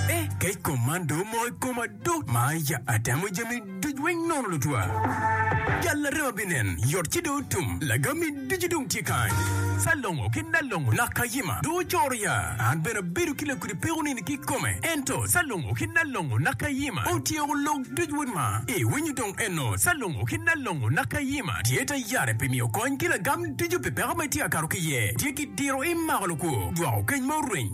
Eh, kec kom man do omoko i koma do. Ma ya atemo jami duc weng nono lutwa. Jal larema binen, yot ci do otum. Lagami ducu dong tye kany. Salongo ki Nalongo nak kayima do ocoro ya. An bene abedo ki lakudi peko nini ki kome. Ento Salongo ki Nalongo nak kayima otyeko lok duc weng ma. Iwinyo dong eno Salongo ki Nalongo nak kayima tye ta yare pi miyo kony ki lagam ducu pi peko ma itye ka kato ki iye. Tye ki diro imako lukwo, jwako keny ma orweny.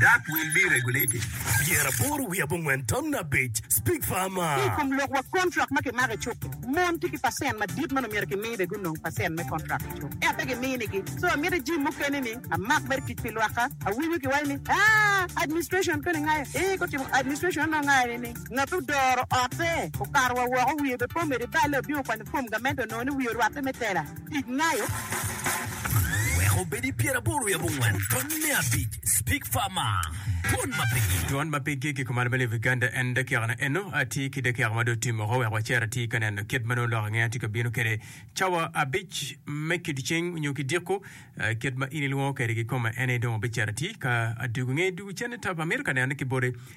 Dark will be regulated. Dyere aboro wiye abongwen tamne abic, Speak farmer. Ki i kom lok wa kontrak ma kimako i cuk-ki, mon tye ki pacent madit ma omyero kimi be gunong pacent me kontrak i cuk, ento pe giminigi. So amiti jim mukene ni amak mere tic pi lwakka. Awinyo kiwaco ni, Aa, administration koni ngayo? Ee, gutimo administration onongo ngayo ni ni ngat odoro otte okato wa woko wiye be pe omede balle obino kwanyo fom gamente onongo ni wiye orwatte me tela. Tic nayo wek obed i pyer aboro wiye abongwen tony me abic speak far ma twon ma pigi. Twon ma pigi ki kuman bene i Uganda en dakiaka na eno atye ki dakiaka ma dong otim oko wek wacer atir ka neno kit ma nongo lok ange atye ka bino kede cawa abic me kidiceng nyo ki diko kit ma in ilwongo kede ki koma ene dong abicero atir ka adugu nge dugu cene tap amito ka neno ki boti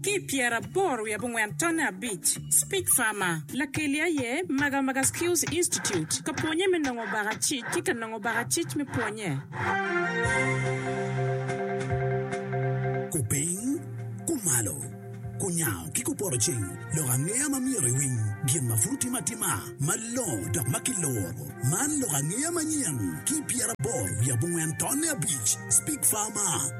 Ki i pyeraboro wiye abongwen tonne abic, Speech Farmer, Lakeli aye Magamaga Skills Institute ka pwonye me nongo baka cic ki ka nongo baka cic me pwonye. Kupiny, kumalo, kunyango ki kupoto cing lok angeya ma myero iwiny gin ma pud otim atima malongo dok ma kiluro. Man lok angeya manyen ki i pyeraboro wiye abongwen tonne abic, Speech Farmer.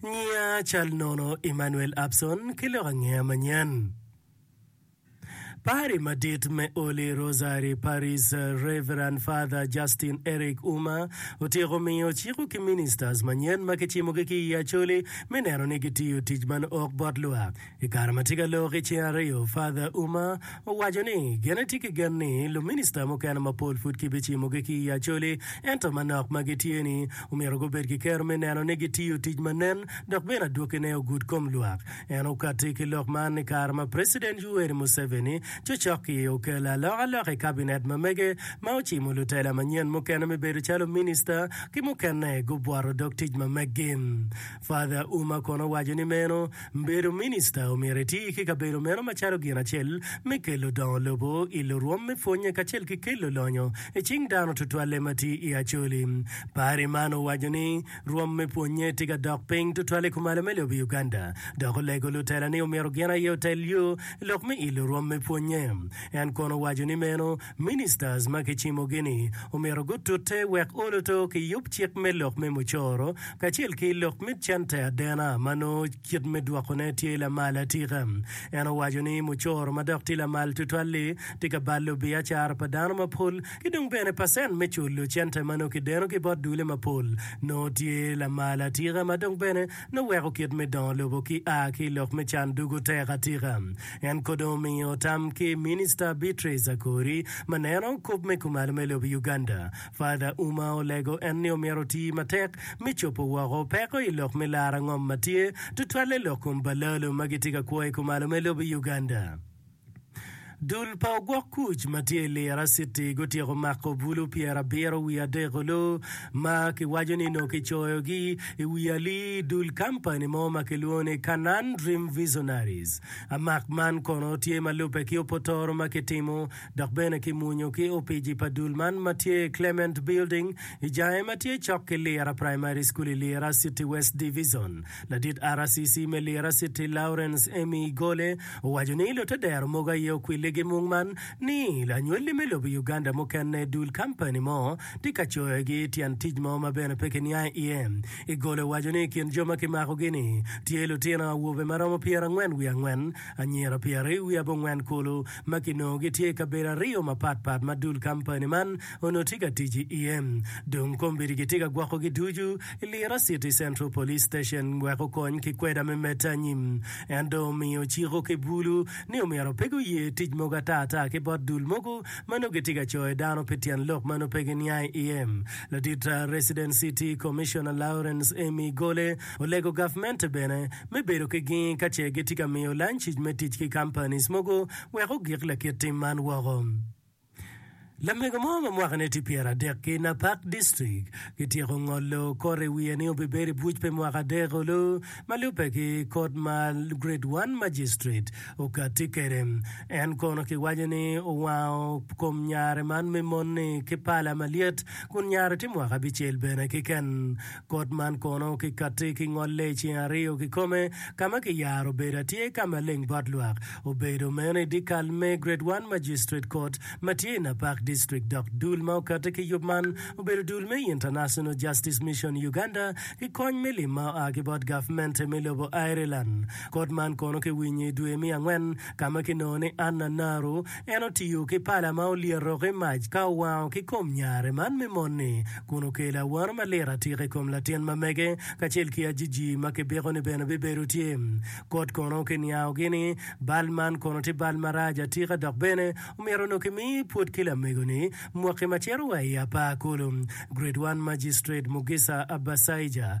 Nyinga cal nono Emmanuel Abson ki lok angeya manyen. Pari madit me Holy Rosary Parish Rev. Father Justin Eric Uma otyeko miyo ciko ki ministers manyen ma kicimogi ki i Acholi me neno ni gitiyo tic man ok bot lwak. I kare ma tye ka lor ki cing aryo, Father Ouma owaco ni gin etye ki gen ni luminista mukene mapol pud kibicimogi ki i Acholi ento manok ma gitye ni omyero gubed ki kero me neno ni gitiyo tic ma nen dok bene adwokine ogud kom lwak. En okatti ki lok man i kare ma President Yoweri Museveni cocok-ki okelo alokaloka i kabinet ma mege ma ocimo lutela manyen mukene me bedo calo minista ki mukene gubworo dog tic ma megi. Father Ouma kono waco ni meno bedo minista omyero eti ki kabedo meno macalo gin acel me kelo dongo lobo i lurwom me pwonye kacel ki kelo lonyo i cing dano tutwalle ma tye i Acholi. Pari man owaco ni rwom me pwonye tye ka dok piny tutwal i kumalo me lobo i Uganda dok olego lutela ni omyero gin aye otel yo lok me ilo rwom me pwonye. En kono owaco ni meno Ministers ma kicimogi ni omyero gutute wek oluto ki yub cik me lok me mucoro kacel ki lok me cente adena ma nongo kit me dwokone tye lamal atika. En owaco ni mucoro ma dok tye lamal tutwal-li tye ka balo biacara pa dano mapol ki dong bene pacent me culo cente ma nongo kideno ki bot dule mapol nongo tye lamal atika ma dong bene Noweko kit me dongo lobo ki a ki i lok me can dugo tek atika. En kono omiyo tam ki Minista Beatrice Akori ma neno kop me kumalo me lobo i Uganda. Father Ouma olego en ni omyero oti matek me cobo woko peko i lok me laro angom ma tye, tutwalle lok kom balalo ma gitye ka kwo i kumalo me lobo i Uganda. Dul pa ogwok kuc ma tye i Lira City gutyeko mako bulu pyerabiro wiye adek-ku ma kiwaco ni nongo kicoyogi i wi ali i dul kampani mo ma kilwongo ni Canaan Dream Visionaries. Amak man kono tye ma lubbe ki opotoro ma kitimo dok bene kimwonyo ki opici pa dul man ma tye i Clement Building i jange ma tye cok ki Lira Primary School i Lira City West Divizon. Ladit RCC me Lira City Lawrence Emmy Igole owaco ni lutedero mogo aye okwille gimung man ni lanywelli me lobo Uganda mukene dul kampani mo tye ka coyogi tyen tic mo ma bene pe kiniang iye. Igole owaco ni i kin jo ma kimakogi ni tye lutino awobe ma romo pyerangwen wiye angwen, anyira pyeraryo wiye abongwen kulu ma kinongo gitye i kabedo aryo mapat pat ma dul kampani man onongo tye ka tic iye dong kombeddi gitye ka gwokogi ducu. Lira City Central Police Station wek okony ki kweda me medde anyim. En dong omiyo ociko ki bulu ni omyero pe guye tic mogo ata ata ki bot dul mogo ma nongo gitye ka coyo dano pi tyen lok ma nongo pe giniang iye. Ladit Resident City Commissioner Lawrence Amy Gole olego gavmente bene me bedo ki gingi ka ce gitye ka miyo lanc-cic me tic ki companies mogo wek ogik lakit tim man woko. Lamego mo ma mwakane tye pyeradek-ki na Park District kityeko ngolo kore i wiye ni obibedo i buc pi mwaka adek olu ma lubbe ki Kot ma Grade One Magistrate okatti kwede. En kono kiwaco ni owango kom nyare man me mon-ni ki pala malyet kun nyare tye mwaka abicel bene keken Kot man kono kikati ki ngolle i ceng aryo kikome, ka ma kiyaro obedo atyer ka maleng bot lwak. Obedo meno i dyekal me Grade One Magistrate Court ma tye i Napak District dok dul ma okate ki yub man obedo dul me International Justice Mission Uganda ki kony me lim ma oa ki bot gavmente me lobo Ireland. Kot man kono kiwinyo i dwe me angwen ka ma kinongo ni Anna Naru En otiyo ki pala ma olyeto ki mac ka owango ki kom nyare man me mon-ni kun okelo awano malit atika i kom latin ma mege kacel ki Ajiji ma kibiko ni bene bibedo tye. Kot kono kiniangogi ni, Bal man kono tye bal marac atika dok bene omyero onongo kimi pwod ki lamego-ni mwaki ma cito wa i apar kulu. Grade One Magistrate Mugisa Abasaija.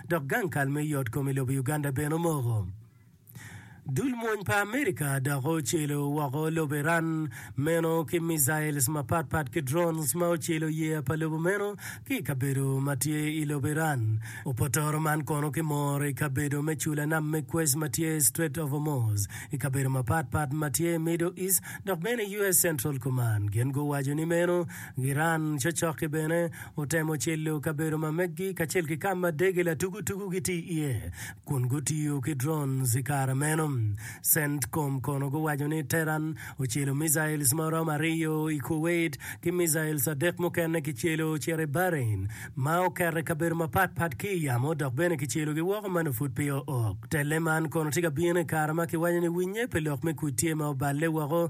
dok gang kal me yot kom i lobo Uganda bene omoko. Dul mwony pa America dok ocelo woko lobo Iran meno ki missiles mapat pat ki drones ma ocelo yeya pa lobo meno ki i kabedo ma tye i lobo Iran. Opotoro man kono kimoro i kabedo me cula nam me Quays ma tye i Strait of Hormuz, i kabedo mapat pat ma tye i Middle East dok bene i US Central Command gin guwaco ni meno Giran cocoki bene otemo cilo kabedo ma meggi kacel ki ka ma dege latugutugu gitye iye, kun gutiyo ki drones i kare meno. CENTCOM kono guwaco ni Tehran ocelo missiles ma oromo aryo i Kuwait ki missiles adek mukene kicelo ocito i Bahrain ma oket i kabedo mapatpat ki i yamo dok bene kicelogi woko ma nongo pud pe oo. Telle man kono tye ka bino i kare ma kiwaco ni winnye pi lok me kuc tye ma oballe woko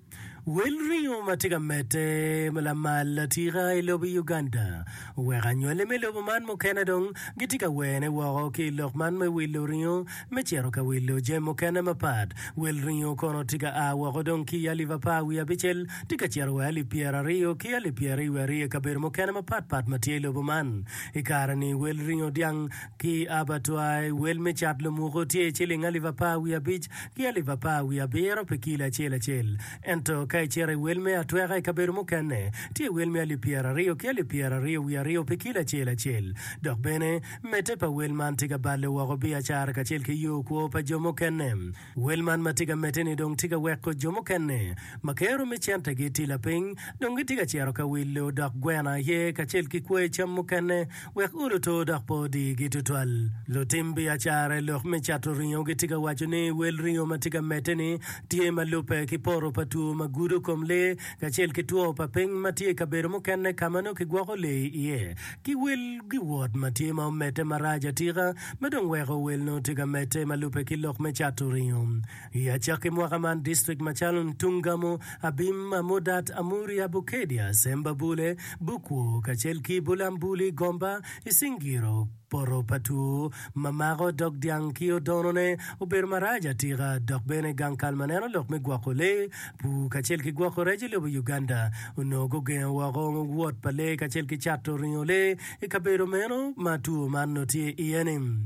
Wel ringo ma tye ka medde lamal atika i lobo Uganda oweko anywali me lobo man mukene dong gitye ka wene woko ki i lok man me wilo ringo me cito ka wilo jami mukene mapat. Wel ringo kono tye ka a woko dong ki i alip apar wiye abicel tye ka cito wa i alip pyeraryo ki alip pyeraryo wiye aryo i kabedo mukene mapat pat ma tye i lobo man. I kare-ni wel ringo dyang ki abattoir wel me cat lomuko tye ciling alip apar wiye abic ki alip apar wiye abiro pi kilo acel acel. Ento ka icito i wel me atweka i kabedo mukene, tye wel me alip pyeraryo ki alip pyeraryo wiye aryo pi kilo acel acel. Dok bene, medde pa wel man tye ka balle woko biacara kacel ki yo kwo pa jo mukene. Wel man ma tye ka medde-ni dong tye ka weko jo mukene ma kero me cente-gi tye lapiny dong gitye ka cito ka wilo dok gweno aye kacel ki kwoyo cam mukene Wek ur oto dok pe odigi tutwal. Lutim biacara i lok me cato ringo gitye ka waco ni wel ringo ma tye ka medde-ni tye ma lubbe ki poto pa two ma gudo kom lee kacel ki two pa piny ma tye i kabedo mukene ka ma nongo kigwoko lee iye ki wel giwot ma tye ma omedde marac atika ma dong weko wel nongo tye ka medde ma lubbe ki lok me cato ringo I acakki mwaka man, distrik macalo Ntungamo, Abim, Amudat, Amuria, Bukedia, Semba Bule, Bukwo, kacel ki Bulambuli, Gomba, Isingiro, Poto pa Two, Mamako dog dyang ki Odonone obedo marac atika dok bene gang kal ma neno lok me gwoko lee, pur kacel ki gwoko rec i lobo Uganda onongo gugengo woko wot pa lee kacel ki cato ringo lee i kabedo meno ma two man nongo tye iye-ni.